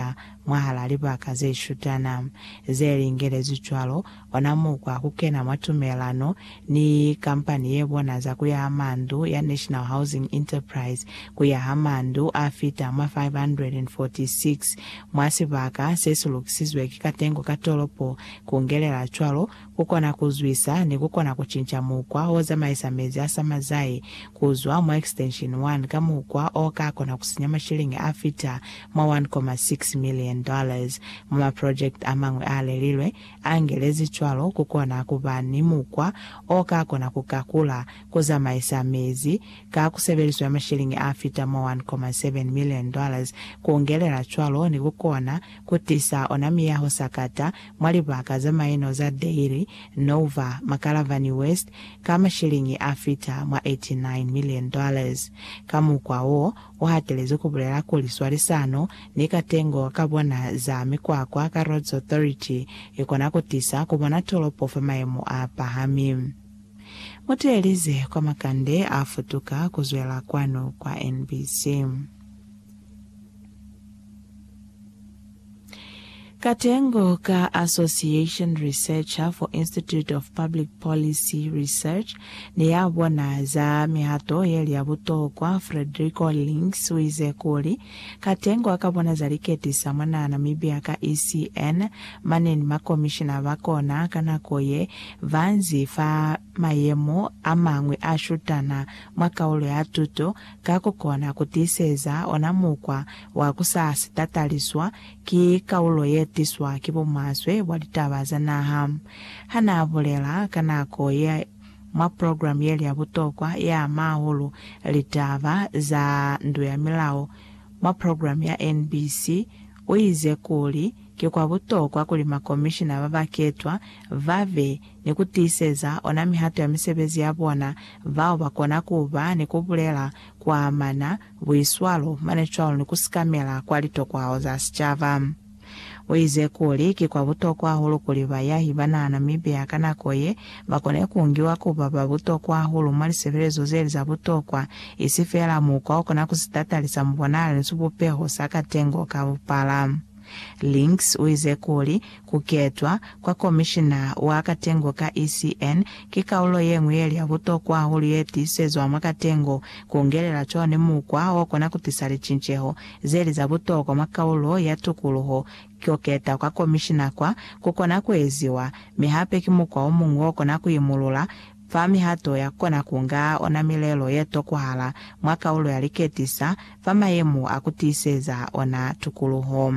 kubulelela mwahal'a libaka ze shutana ze lingelezwi cwalo, ona mukwa kukena mwa tumelano ni kampani ye bona za kuyaha mandu ya National Housing Enterprise kuyaha mandu a fita mwa 546 mwa sibaka se si lukisizwe ki katengo ka tolopo, kungelela cwalo Ku kona ku zwisa ni ku kona ku cinca mukwa o zamaisa mezi a sama zai ku zwa mwa extension 1 ka mukwa o ka kona ku sinya mashiliñi a fita mwa 1.6 million dollars mwa maprojekiti a mañwi a lelilwe, a ngelezi cwalo. Ku kona ku ba ni mukwa o ka kona ku kakula ku zamaisa mezi ka kusebeliso ya mashiliñi a fita mwa 1.7 million dollars, ku ngelela cwalo ni ku kona ku tisa ona miyaho sakata mwa libaka za maino za Dairy, Nova, Makalavani West, ka mashiliñi a fita mwa 89 million dollars. Ka mukwa wo, u hatelezi ku bulela kuli swalisano ni katengo ka bona za mikwakwa ka Roads Authority i kona ku tisa ku bona tolopo fa mayemo a pahami. Muteelize kwa makande a futuka ku zwela kwanu kwa NBC. Katengo ka Association Researcher for Institute of Public Policy Research ne ya bona za mihato ye li ya butokwa, Frederico Links uize kuli, Katengo aka bona za liketisa mwa naha Namibia ka ECN, mane ni makomishina ba kona ka nako ye banzi fa mayemo amañwi a shutana mwa kaulo ya tuto, ka ku kona ku tiiseza ona mukwa wa ku sa si tataliswa ki kaulo ye tiswa ki bumaswe bwa litaba za naha. Ha n'a bulela ka nako ye mwa program ye li ya butokwa ye ama hahulu litaba za ndu ya milao mwa program ya NBC, u ize kuli ki kwa butokwa kuli makomishina ba ba ketwa ba be ni ku tiiseza ona mihato ya misebezi ya bona, bao ba kona ku ba ni ku bulela kwa amana buiswalo mane cwalo ni ku sikamela kwa litokwao za sicaba. U ize kuli, Ki kwa butokwa hahulu kuli bayahi ba naha Namibia ka nako ye ba kone ku ngiwa ku ba ba butokwa hahulu mwa lisebelezo ze li za butokwa, isi feela mukwa o kona ku si tatalisa mubonalo ni sibupeho sa katengo ka bupala. Links uize kuli, kuketwa kwa komishina wa katengo ka ECN ki kaulo yeñwi yeli ya butokwa hahulu yetiisezwa mwa katengo, kungelela cwani mukwa okona kutisa licinceho zeli za butokwa mwa kaulo ya tukuluho. Kuketa kwa komishina kwa kukona kueziwa, mi hape ki mukwa omuñwi okona kuimulula. Fa mihato ya kona ku nga ona milelo ye tokwahala mwa kaulo ya liketisa fa mayemo a ku tiiseza ona tukuluho.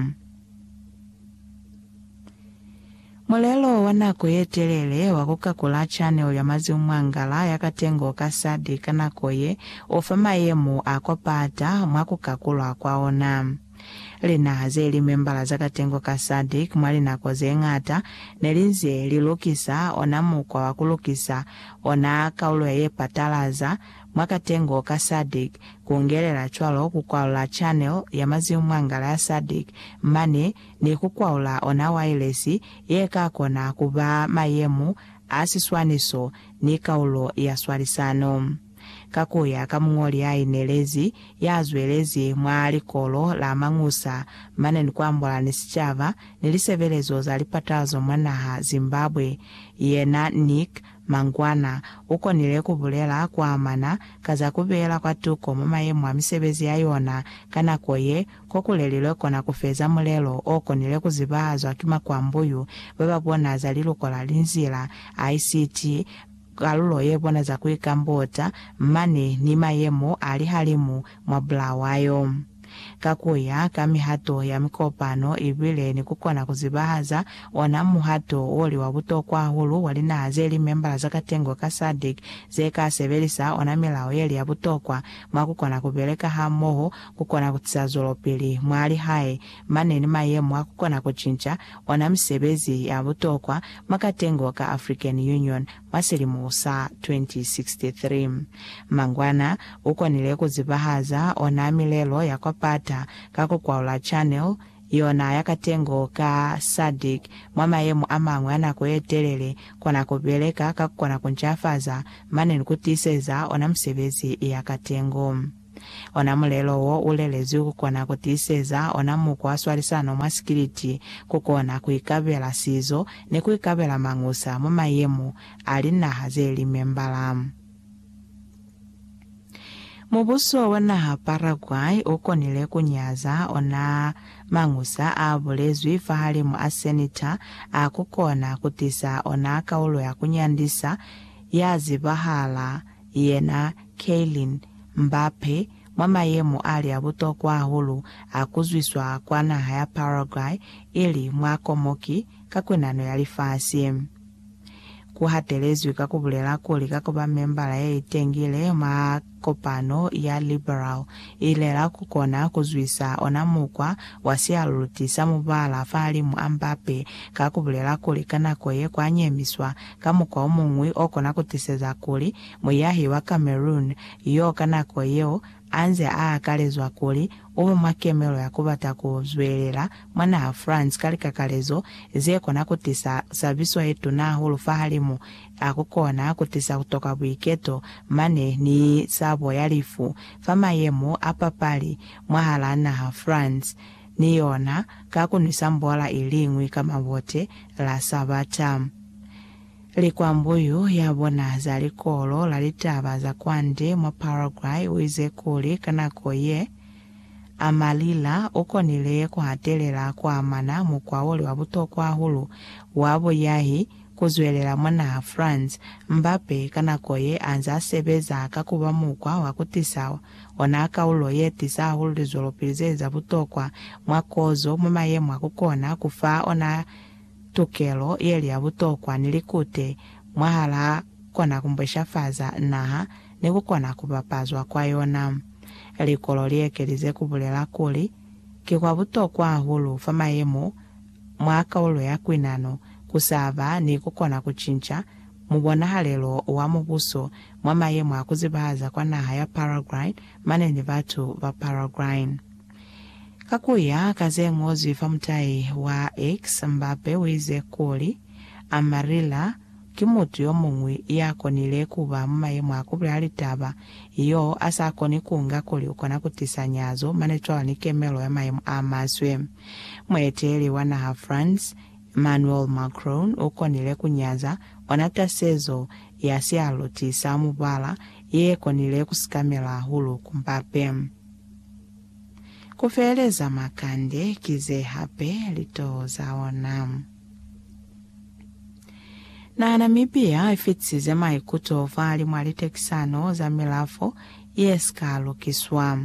Mulelo wa nako ye telele wa ku kakula chanel ya mazimu mwa ngala ya katengo ka sadi ka nako ye u fa mayemo a kwa pata mwa ku kakulwa kwa ona. Linaha ze li membala za katengo ka SADC mwa linako ze ñata ne li nze li lukisa ona mukwa wa ku lukisa ona kaulo ya ye patalaza mwa katengo ka SADC, ku ngelela cwalo ku kwalula channel ya maziumwangala ya SADC mane ni ku kwaula ona wailesi ye ka kona ku ba mayemu a siswaniso ni kaulo ya swalisano. Ka ku ya ka muñoli ya inelezi ya zwelezi mwa likolo la mañusa mane ni ku ambola ni sicaba ni lisebelezo za lipatazo mwa naha Zimbabwe, yena Nick Mangwana u konile ku bulela ku amana ka za ku beela kwa tuko mwa mayemo a misebezi ya yona ka nako ye ko ku lelilwe kona ku feza mulelo o konile ku zibahazwa ki makwambuyu ba ba bona za liluko la linzila, ICT, Kalulo ye boneza kuikambota mane ni mayemo a lihalimu mwa Bulawayo, ka kuya ka mihato ya mikopano ibile ni kukona kuzibahaza ona muhato o li wa butokwa hahulu wa linaha ze li membala za katengo ka SADC ze ka sebelisa ona milao ye li ya butokwa mwa kukona kubeleka hamoho kukona kutisa zwelopili mwa lihae mane ni mayemo a kukona kucinca ona misebezi ya butokwa mwa katengo ka African Union mwa silimo sa 2063. Mangwana, ukonile kuzibahaza ona milelo ya kwa Pata ka kukwaula Channel yona ya katengo ka SADC mwa mayemo amañwi a nako yetelele, kona kubeleka ka kukona kuncafaza mane ni kutiiseza ona misebezi ya katengo. Ona mulelo wo u lelezwi ku kona ku tiiseza ona mukwa swalisano mwa sikiliti, ku kona ku ikabela sizo ni ku ikabela mañusa mwa mayemo a linaha ze li membala. Mubuso wa naha Paraguay u konile ku nyaza ona mañusa a bulezwi fahalimu a Senita a ku kona ku tisa ona kaulo ya ku nyandisa ya zibahala yena Kylian Mbappe mwa mayemo ali a butokwa hahulu a ku zwiswa kwa naha ya Paraguay ili mwa komoki ka kwenano ya lifasi. Ku hatelezwi ka ku bulela kuli ka ku ba membala ye itengile mwa kopano ya liberal, Ilera ku kona ku zwisa ona mukwa wa sialuluti sa mubala fahalimu a Mbappe ka ku bulela kuli ka nako ye kwa nyemiswa Ka mukwa o muñwi o kona ku tiseza kuli muyahi wa Cameroon y'o ka nako yeo a nze a akalezwa kuli u be mwa kemelo ya ku bata ku zwelela mwa naha France ka likakalezo ze kona ku tisa sabiso ye tuna hahulu fahalimu a ku kona ku tisa ku toka buiketo mane ni sabo ya lifu fa mayemo a papali mwahalaa naha France ni yona ka ku nwisa mbola i liñwi ka mabote la Sabata. Likwambuyu ya bona za Likolo la Litaba za Kwande mwa Paraguay u ize kuli ka nako ye, Amarilla u konile ku hatelela ku amana mukwa wo li wa butokwa hahulu wa buyahi ku zwelela mwa naha France, Mbappe ka nako ye a nzaa sebeza ka ku ba mukwa wa ku tisa Ona kaulo ye tisa hahulu lizwelopili ze za butokwa mwa kozo mwa mayemo a ku kona ku fa ona tukelo ye li ya butokwa ni likute mwahal'a kona ku mbweshafaza naha ni ku kona ku bapazwa kwa yona. Likolo li ekelize ku bulela kuli, Ki kwa butokwa hahulu fa mayemo mwa kaulo ya kuinano ku sa ba ni ku kona ku cinca Mubonahalelo wa mubuso mwa mayemo a kuzibahaza kwa naha ya Paraguay mane ni batu ba Paraguay. Ka kuya ka zeñozwi fa mutai wa X, Mbappe uize kuli, Amarilla ki mutu yomuñwi yakonile kuba mu mayemo a kubulela litaba, yo asa koni kunga kuli ukona kutisa nyazo mane cwalo ni kemelo ya mayemo a maswe. Mueteleli wa naha France, Emmanuel Macron u konile ku nyaza ona tasezo ya sialoti sa mubala ye konile ku sikamela hahulu ku Mbappe. Ku feeleza makande ki ze hape litoho za ona. Naha Namibia i fitisize maikuto fa limwa litekisano za milafo ye si ka lukiswa.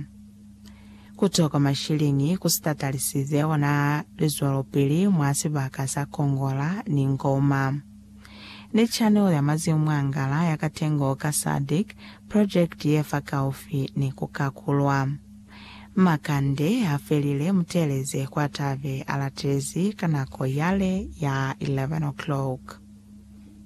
Kuto kwa mashilingi ku sitatalisize ona lizwelopili mwa sibaka sa Congola ni Ngoma. Ni channel ya mazimu mwa ngala ya katengo ka sadc project ye fa kaufi ni ku kakulwa. Makande ha felile muteeleze kwa tabe a latelezi ka nako yale ya 11 o'clock.